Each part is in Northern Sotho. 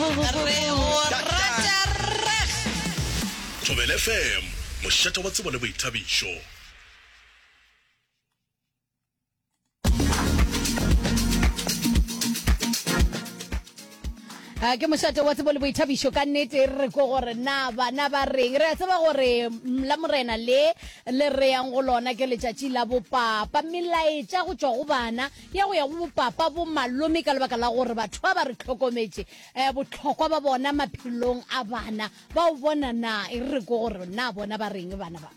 Re go rata rrag. Thobela FM, mošate wa tsebo le boithabišo. Ah, ke mošate wa tsebo le boithabišo ka nnete re ko gore na bana ba reng re a tseba gore mm, la morena le le reyang go lona ke letšatši la bopapa melaetša go tšwa go bana ya go ya go bopapa bo malome ka lebaka la gore batho ba ba re tlhokometše um botlhokwa ba bona maphelong a bana ba o bona na e re ko gore na bona ba reng bana ba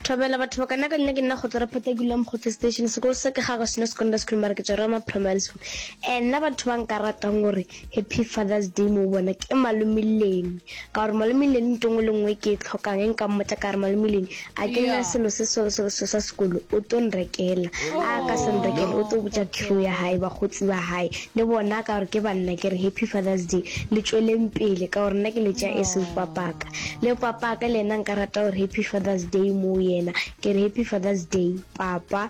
thobela batho ba kana ka nna ke nna go tlore phata ke leng go station sekolo se ke ga go seno secondary school mara ke tsere ma primary school and nna batho ba nka ratang gore Happy Father's Day mo bona ke malome Leni ka gore malome Leni nto ngwe le ngwe ke e tlhokang e nka mmotsa ka gore malome Leni a ke nna selo se selo selo selo sa sekolo o to nrekela a ka se nrekela o to botsa crew ya gae bagotsi ba gae le bona ka gore ke banna ke re Happy Father's Day le tsweleng pele ka gore nna ke letša e se papaka le papaka le ena nka rata gore Happy Father's Day mo yena ke re Happy Father's Day papa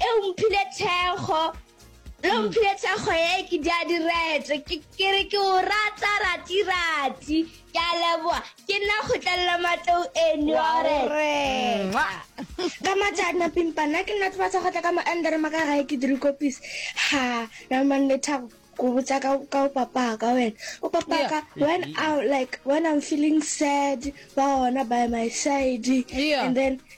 e o mphile thekgo le o mphile thekgo e ke di a diretse ke ke re ke o rata ratirati ke a leboa ke nna kgotlelela matlou eno oreka ka matšana pimpa nna ke nna tsebatsa go tla ka moendere maka gae ke dire kopis ha naman le thabo ko botsa ka ka o papaka wena o papaka when i like when i'm feeling sad ba ona by my side Yeah. and then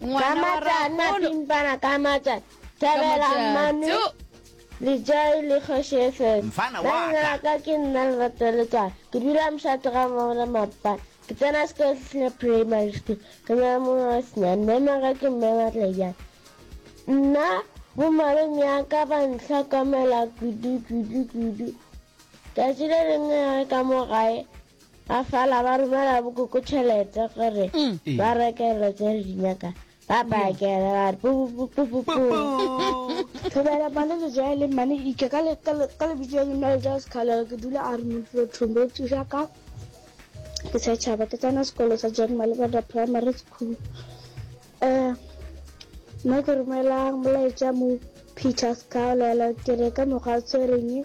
Kamatana pimpana kamata thabela mami le jai le kgoši fm Mfana wa ka. nna ka ke nna le rata le tswa ke dula moshato ga mogona mapa ke tsena sekolo se sena primary school ke nyala mongwe wa senyane memaga ke mme matlejana nna bomalome ya ka ba ntlhokomela kudu kudu kudu tšatši le lengwe ya re ka mo gae Ba fala ba romela bokoko tšhelete gore ba reke dilo tse re di nyaka ba pakele ba re pupupupupu thobela mane le ja le mane ike ka le ka le ka le bitse le mele ja sekhala ke dula a re mo tlo thombe tsuja ka ke sa tšhaba ke tsana sekolo sa John Malibanda Primary School eh nna ke romelang molaetša mo Peter Scaulelo ke re ka mokgwa tshwereng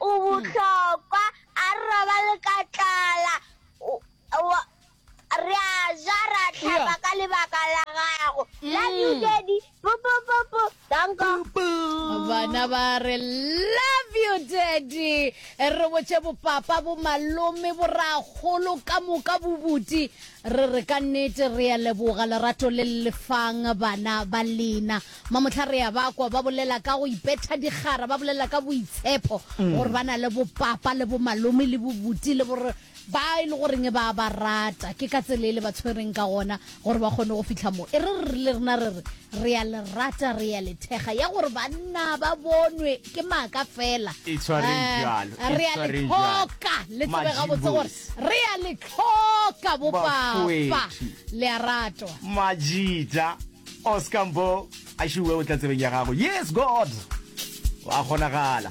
O bohlokwa, a re robale ka tlala, re a ja, re a hlapa ka lebaka la gago. Love you, Daddy. Pu, pu, pu, pu. Danko. bana ba re love you daddy re botše bopapa bo malome bo ragolo ka moka bobuti re re ka nnete re a leboga lerato le le lefang bana ba lena Mamohla re a ba kwa ba bolela ka go ipetha dikgara, ba bolela ka boitshepho, gore ba na le bopapa le bomalome le bobuti le borre ba e le goreng ba a ba rata. Ke ka tsela e le ba tshwereng ka gona gore ba kgone go fitlha mo. E re re rile rena re re, Re a le rata, re a le thekga. Ya gore banna ba bonwe ke maaka fela. E tshwareng Eh, bjalo, e Re a le tshwareng bjalo. tlhoka, le tsebe gabotse gore Majibosi. re a le tlhoka bo papa. Bafoetši. Le a ratwa. Majita. Oscar Mbo, a šiwe o tla tsebeng ya gago. Yes, God! Wa kgonagala.